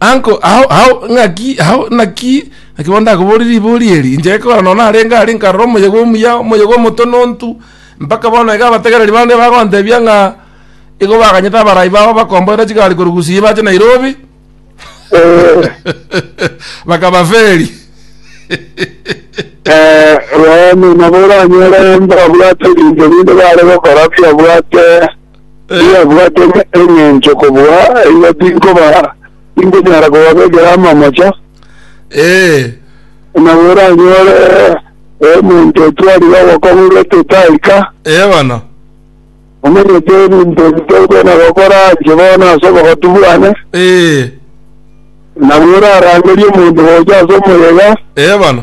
Uncle, hao, hao, ng'aki, hao, naki, naki bono ndakoboria ribori eri, inche ekero nonya narenge aria nkarora omoyega omuya, omoyega omotonontu, mpaka bono iga abategereri bande bagontebia ng'a igo baganyete abarai babo bakomboera chigari korwa Gusii bache Nairobi, Eh, bakabaferi. eh, rwao nonye nabo oranyore mbabwate ebinto binde bare gokora biabwate Eyabwate engencho kobua iga tinkoba, tinkonyara kobabekera amamocha, Ee, na bweranyore omonto otwarire obokong'u bw'etete aika, ee bono. omanyete ebinto ebi tokona gokora inche bono ase obogotu bwane, Ee, na bwerarangerie omonto gocha ase omoyega, ee bono.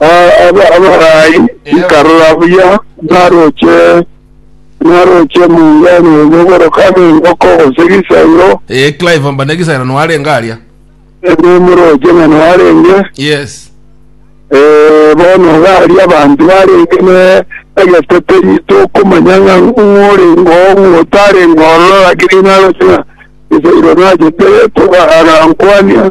Abarai nkarora buya naroche naroche omong'ina oyo ogoroka n'engoko gose gisairo, Eh, Clive mbana egisera noarenge aria. nomoroche ng'a narenge Yes. Eh, bono gari abanto barenge ne egeteteri tokomanya ng'a ng'orengo ng'otarengo ororo lakini naroche ng'a esairo nachete toga- agankwania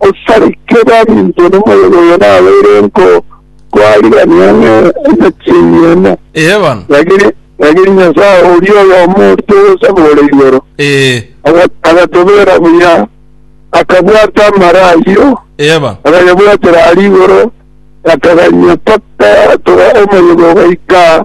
Osarikire arinto nomoyega oyo nabeire enko twarigania ng'a emechie emo. Ee bono. Lakini lakini Nyasaye oria oyomo orito ogosaba ore igoro, Ee. aga- agatobera buya, akabwata amara ayio, Ee bono. agayabwatera aria igoro, akaganyia mpaka toga omoyega ogaika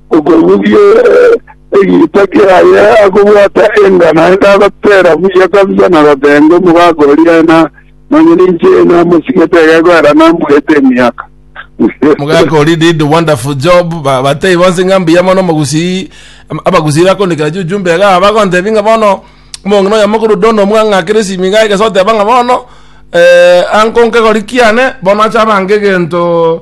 Okorugia egiita kiaye akobwata enga naende agoteera buya kabisa na goteebia omogaka oria, Nonya ninche namosigete egegoera nambuete emiaka. Omogaka oria did wonderful job. Ba- Batei bonsi ng'a mbuya mono omogusii. Am- Abagusii bakondikera chiujumbe iga bagontebia ng'a bono omong'ina oyo omokoro Don omwang'akera esimi iga egese oteba ng'a bono eh, anko nkegori kiane bono acha abange egento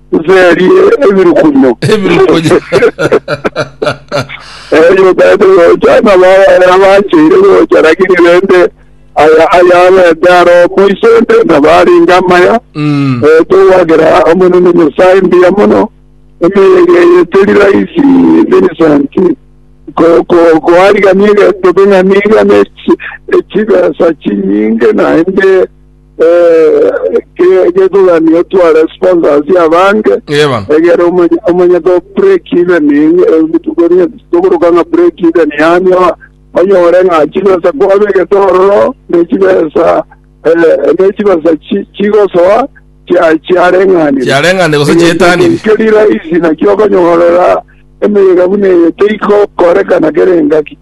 Nserie ebirukunyo. Ebirukunyo. Erio bende gocha nabo abana bancheire gocha, lakini rende aya ayabete aro moiso onde nabo arenge amaya. Mm. Eh, togwakera Omonene Nyasae mbuya mono, emioyo ege eye teri rahisi, Vincent, ko ko koarigania egento king'ani iga ne chi- ne chibesa chinyinge naende Eh, ke- ketogani otware sponsors abange Ee bono. egere omanye omanye to break even ebitukoni tokoroka nga break even yani o- onyore nga chibesa kwabegete ororo ne chibesa eh, ne chibesa chi- chigosoa chia- chiareng'anire Chiareng'anire gose chiaetanire. Ekio riraisi nakio okonyorera emeyega buna eye teikokorekana kere engaki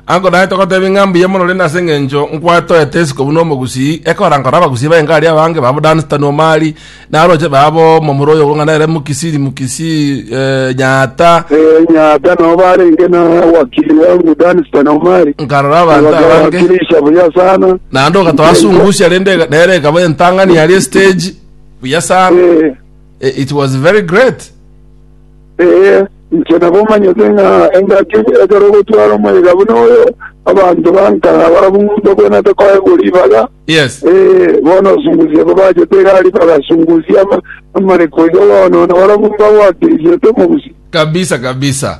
Agodae togotebia ng'a mbuya mono rende ase engencho nkwatoete isiko buna omogusii, ekora nkore abagusii baenga aria abange babo Dunstan Omari, na abaroche babo, momura oyo okong'ana nere Mukisiri Mukisii, eh, Nyaata, Eh, Nyaata nao barenge na wakili bwango Dunstan Omari. nkarora abanto abange, Bakabakirisha buya sana. naende ogatoasungusia rende ega- nere ekaba entang'ani aria estage, buya sana. Eh, Eh, it was very great. Ee, inche nabomanyete ng'a engaki ekero ogotwara omoyega buna oyo, abanto bankana barabwo mbakwenete koegwa ribaga. Yes. Ee, bono osungusia babachete egari bagasungusia ama- amariko iga bono, na barabwo mbagwatirigiete omobusio. Kabisa kabisa.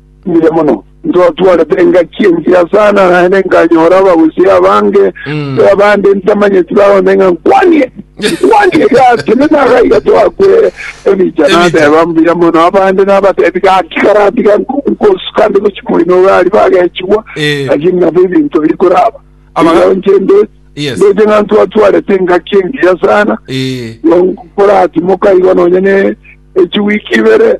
Mbuya mono. Ntwatwarete engaki engiya sana naende nkanyora abagusii abange, Mm. tari abande ntamanyeti bagonde ng'a nkwanie, nkwanie gaki, na naga iga twakwere ebicha. Ebicha. Nateba mbuya mono abande nabatebi gaki karatiga nko- nkosuka nde gochia moino iga aria bagechigwa, Eh. lakini nabo ebinto biri koraba. Abaga- Iga inche nde- Yes. ndeche ng'a ntwatwarete engaki engiya sana, Eh. koratimoka igo nonye ne echiwiki ibere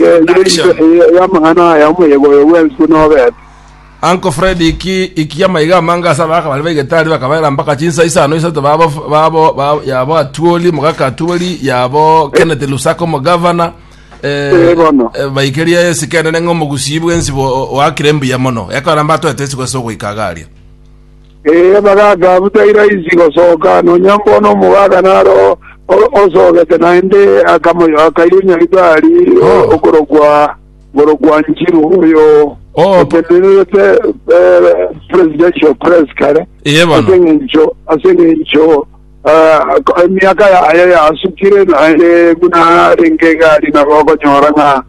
Ye nere inse eye y'amang'ana aya omoyega oyo bw'enswe nobete. Uncle Fred iki iki amaiga amanga asa abaka bari baigete ari bakabaera mpaka chinsa isano isato babo babo ba- yabo atuoli mugaka atuoli yabo Kenneth Lusaka omogavana eh, Eh, bono. eh, baikeria esike enene ng'a omogusii bwensi bo- oakire mbuya mono ekoramba atoete esiko ase ogoika agaria Ee, bagaaka butari raisi gosoka, nonya mbono omogaaka naro o- osogete naende akamo- akayunya ritari Oh. okorokwa okorokwa Njiru oyo Oh. otenererete eh, presidential press kare Eye bono. ase eng'encho ase eng'encho ah, ko- emiaka yaye yasukire naende buna arenge egari nabo okonyora ng'a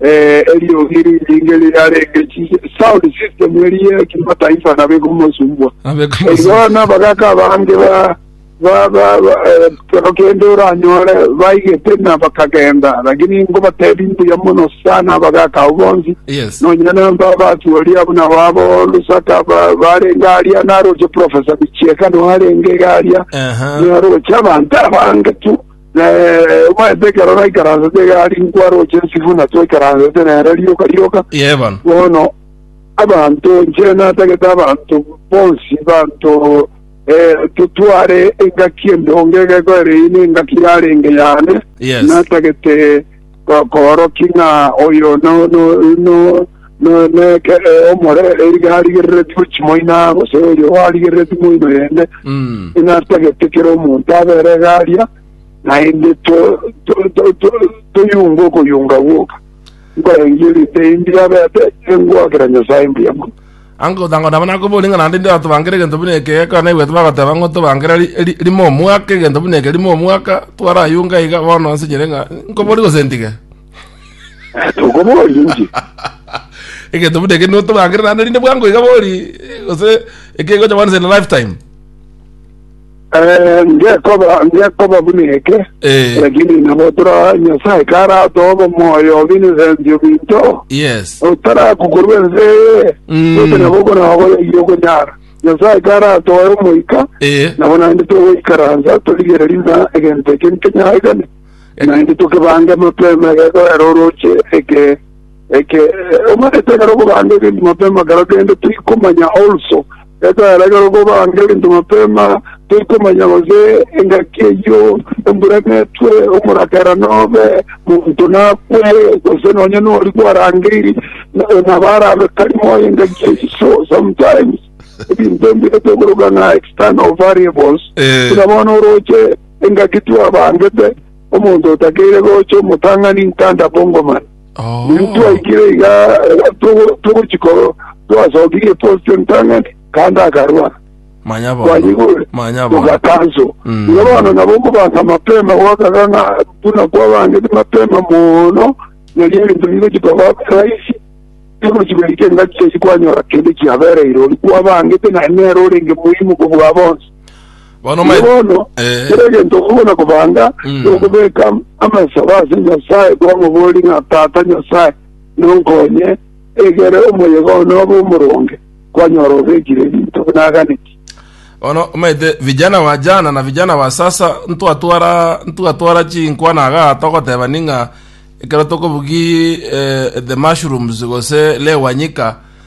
Eh, eriogi rinyinge riarenge chi- sound system erie kimataifa nabo ekomosumbwa Abekomosumbwa. Erio nabagaka abange ba ba ba ba eh, kero kende oranyore baigete na bakagenda lakini ngobatebi mbuya mono sana abagaka abo bonsi Yes. nonyina namba abatuori abo nabo abo lusaka ba- barenge aria naroche profesa bichieka no arenge iga aria Aha. naroche abanto abange tu Na omanyete ekero naikaransete egari nkwaroche ensibwa na twaikaransete nere rioka rioka, Yee bono. bono abanto inche natagete abanto bonsi banto eh, totware engaki endonge egeko ere eye nengaki yarenge yane Yes. natagete Gokoorokia ng'a oyo neke omore eriga arigereretie gwe chimoina, gose oyo arigereretie moino yende, inatagete kera omonto abere egaria, naende toyunga okoyunga gwoka. Nkorengie rinde imbiabete, engoakera Nyasae mbuya mono. Anga ogotango nabo nakobori ng'a naende ndatobankere egento buna eke, ekero naigwete bagoteba ng'a otobankere ri- ri- rimo omwaka, egento buna eke rimo omwaka, twarayunga iga, bono nsinyire ng'a nkobori gose ntige. Tokoboria inche. egento buna eke notobankere naende rinde bwango iga bori, gose ekegocha once in a lifetime. Eh, ngekoba ngekoba buna eke Eh, lakini nabo tora nyasaye karatoba moyo binesenti obinto yes. otarakukorwa ense eye Mm. ote nabo konagoyaiye okonyara nyasaye karatoe omoika Eh, nabo naende togoikaransa torigereri na egento eke nkenyaigane naende tokebange mapema gekorera oroche eke Ekero omonto ekero okobanga egento mapema, ekero kende toikomanya also gekorera ere ekero okobanga egento mapema toikomanya gose engaki eyio embura netwe, omorakera nobe, monto nakwe, gose nonye nori gwarangeiri na- nabo arabe tari moyo engaki eyio. So sometimes ebinto ebi tokoroka ng'a external variables, Eh. buna bono oroche engaki twabangete omonto otakeire gocha omotang'ani ntanda bongoman Intwe twaikire iga togochia korwa, twasokirie post entang'ani, kande akarwa. Manya bono. Twanyigure, Manya bono. tugatanso. Mm. Iga bono nabo okobansa mapema gwakaga ng'a buna kwabangete mapema mono, nario ebinto bigochia koba rahisi, tigochia goika engaki eyio kwanyora kende kiabereire, oria kwabangete naye nere orenge moimu kobua bonsi. Bono Naki omanye- bono Eh. kera egento okogona kobanga Mm. nokobeka amasabo ase Nyasae kwamobori ng'a Tata Nyasae nonkonye egere omoyega one obe omoronge kwanyora obekire ebinto buna aganeti. bono omanyete vijana wa jana na vijana wa sasa ntwatwara ntwatwara chinkwana iga togotebani ng'a ekero tokobugi eh, the mushrooms gose lewanyika